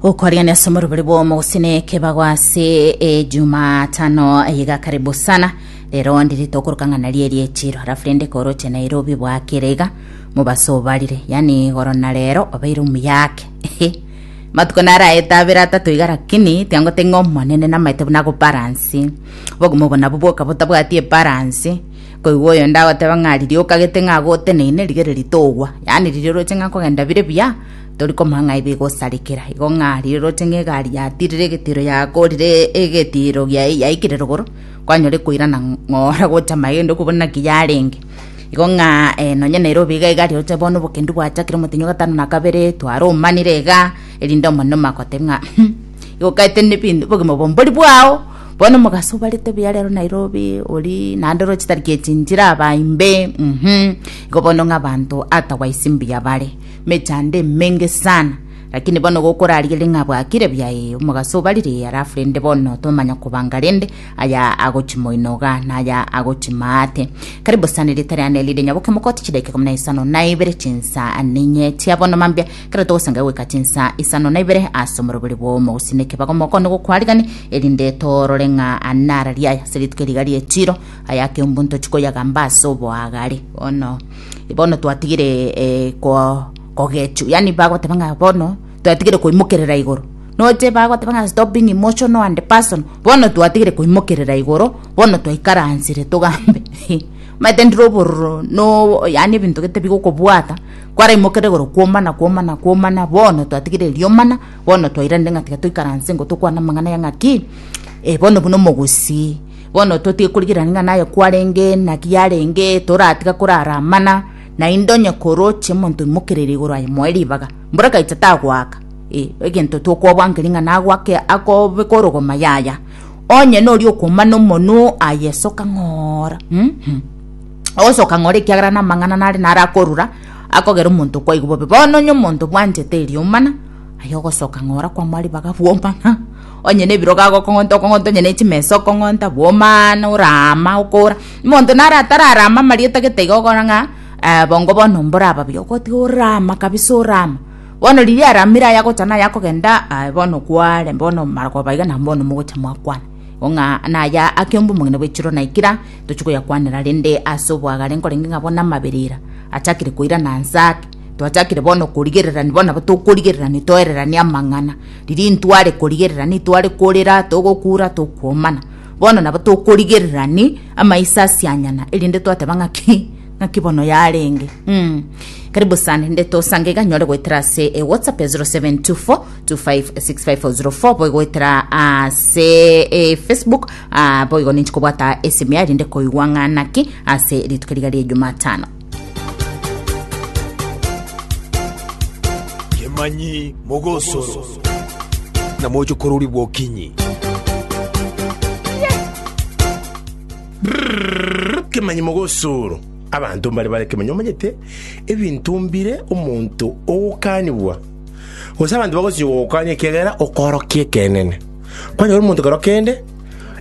gokwarigania ase omorobori bwomo gose na ekebago ase ejumatano iga karibu sana rero ndiri tokoroka ng'a nari eri echiro halafu rende koroche nairobi bwakere iga mobaso obarire yani igoro na rero obeire omuyake ehe matuko naro aete abere atato iga lakini tiangote ng'a omonene namaete buna gobaransi obogima obo nabo bwoka botabwati ebaransi Koigwa oyonde agoteba ng'a riria okagete ng'a agoteneine, rigereria togwa. Yaani riria oroche ng'a nkogenda bire buya, tori komanya ng'a ibe igosarekera. Igo ng'a riria oroche ng'a egari yatirire egetiro yakorire egetiro gia yaikire rogoro, kwanyora ekoirana ng'ora gocha magendo okobua naki yarenge. Igo ng'a eh nonye nere obe iga egari oche bono obokendu bwachakire omotenyi o gatano na kabere, twaromanire iga, erinde omonene omanye goteba ng'a igo oketene ebinto obogima obo mbori bwao. Bono omogaso obarete buya rero Nairobi ori naende oro chitari kiechinchire abaimbe mhm igo bono ng'a abanto otherwise mbuya bare mechando emenge sana lakini bono gokorarigeria ng'a bwakire buya ee omogaso obarire ee alafu rende bono tomanya kobanga rende aya agochi moino iga na aya agochi maate karibu sana erita riane rire nyaboke mokote chidaika ikomi na isano na ibere chinsa ninye chia bono mambia Ekero togosengera goika chinsa isano na ibere ase omorobori bw'omogusii nekebago mokoone gokwarigani, erinde toorore ng'a nara riaye ase rituko eriga ri'echiiro, aya ake ombuya ntochi koyagamba ase oboagare. Bono bono twatigire eh, ko- kogechwa yani bagoteba ng'a bono twatigire koimokerera igoro noche bagoteba ng'a stop being emotional and person bono twatigire koimokerera igoro bono twaikaransire togambe omanyete ndire obororo no yani ebinto gete bigokobwata Kwaraimokeire igoro kw'omana, kw'omana, kw'omana, bono twatigire erio omana, bono twairanire ng'a tiga toikaranse ingo tokwane amang'ana aya ng'a ki, eh, bono buna omogusii. Bono totige korigerania ng'a naye kwarenge, naki yarenge, toratiga korara amana, naende onye koroche omonto oimokereri igoro aye moe ribaga, mborakaite tagoaka, eh, egento tokobwankeria ng'a nagoake akobeka orogoma yaya, onye noria okomana omonwe aye soka ng'oora, uhum. ogosoka ng'ore ekiagera namang'ana nare naro akorura akogera omonto kwaigwa bobe bono onye omonto bwanchete erioma ng'a aye ogosoka ng'ora kwamua ribaga bwoma ng'a onye nebirogo agokong'ota okong'ota onye nechimesa okong'ota bwomaa na oraama okora omonto naro atararama amaria otagete iga okora ng'a bongo bono mbore ababia ogotiga oraama kabisa oraama bono riria aramire aye agocha naye akogenda bono kware bono marogoba iga nabo bono mogocha mwakwana. Igo ng'a naya akeomba omogina bwe chiro naikira, tochi koyakwanera rende ase oboagare nkorenge ng'a bono amabera ira achakire koirana nse ake. Twachakire bono korigererani bono nabo tokorigererani toereranie amang'ana. Riria intware korigererani itware korera togokura tokwomana. Bono nabo tokorigererani amaiso asianyana erinde twateba ng'aki ng'aki bono yarenge. Karibu sana rende tosange iga nyore goetera ase WhatsApp ya 0724. 25650 boigoetera ase eh, facebook ah, boigo ninche kobwata esimi yaye rinde koigwa ng'anaki ase rituko riga rie jumatano kemanyi mogosoro na mocho korori bwokinyi kemanyi mogosoro abanto mbare bare kemanyi omanyete ebinto mbire omonto ogokanigwa Gose abanto bagochia gogokanya ekiagera okorokia ekeene. Kwanyora omonto kero kende,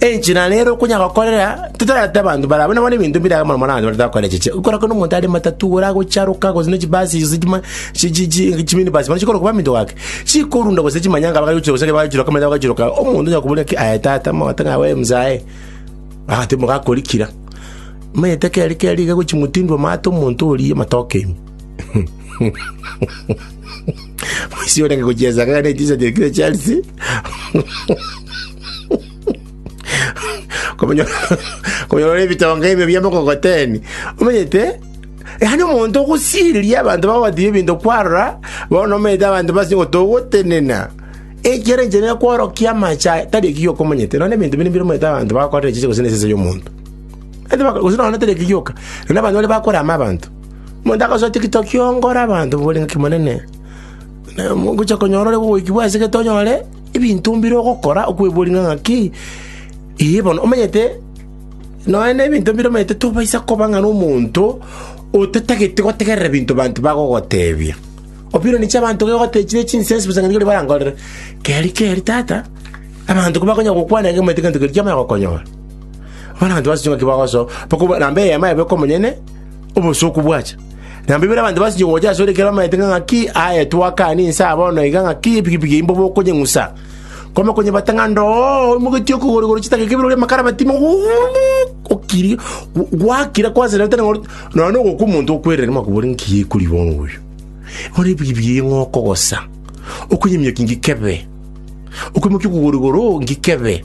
enchera ere nare okonyara gokorera, totareti abanto barabwo nabo nebinto bire iga mono mono abanto baretare gokorera chiche. Okora kore nomonto are matatu igoro agocharoka gose ne chibasi gose chima chi chi chi chiminibus bono chikoroka baminto gake, chikorunda gose chimanyanga bagachirusia gose ekero bagachiroka amache bagachiroka, omonto onye akoboria ki aye tata mogote ng'a we mzae, agateba gakori kira. Omanyete keri keri iga gochi motindwa amate omonto oria amatoke ime. Moisio orenge gochiesa kare ne chinsa chiaye kire chiarisi. Komenya komenya ore bitonga ebyo bia mokogoteni. Omanyete Yani omonto ogosiriria abantu bagotibia ebinto kwarora bono omanyete abantu basi gotogotenena ekero enchene kworokia amacha tari ekio okomanyete none ebinto binde bire omanyete abantu bakorera chiche gose nesese y'omonto Ete bako- gose none tari ekigioka none abantu bare bakorama abantu Omonto agasoa tikito kiongora abanto bore ngaki monene, na mogocha konyora ore gogoiki bwasegete onyore ebinto mbire ogokora okweboria ng'a ng'aki, ee bono omanyete nonya na ebinto mbire omanyete tobaisa koba ng'a na omonto otatagete gotegerera ebinto banto bagogotebia. Opinion chia abanto gegotebia chire chinsense bosa ng'a nigo riria barankorere, keri keri tata, abanto kobakonya gokwana iga omanyete egento keria kiamanya gokonyora. Bono abanto basache ng'aki bagosoa, bako na eyemo yaye boika omonyene. obosooku bwacha. Na mbaibori abanto basinchire gocha asore ekero bamanyete ng'a ng'aki aetwe akane inse aa bono iga ng'aki epikipiki yaye mbobe okonyeng'usa. Kwama konyebata ng'a ndoo oimogetie okogorigori chitang'ake bire oria amakara amatimo okiri gwakira kwasererete noro nonya ogokwa omonto okwerere makobori nki ekori bono oyo. Bono epikipiki eye ng'a okogosa okonyeminyokia nki kebe okoimokia okogorigoro nki kebe.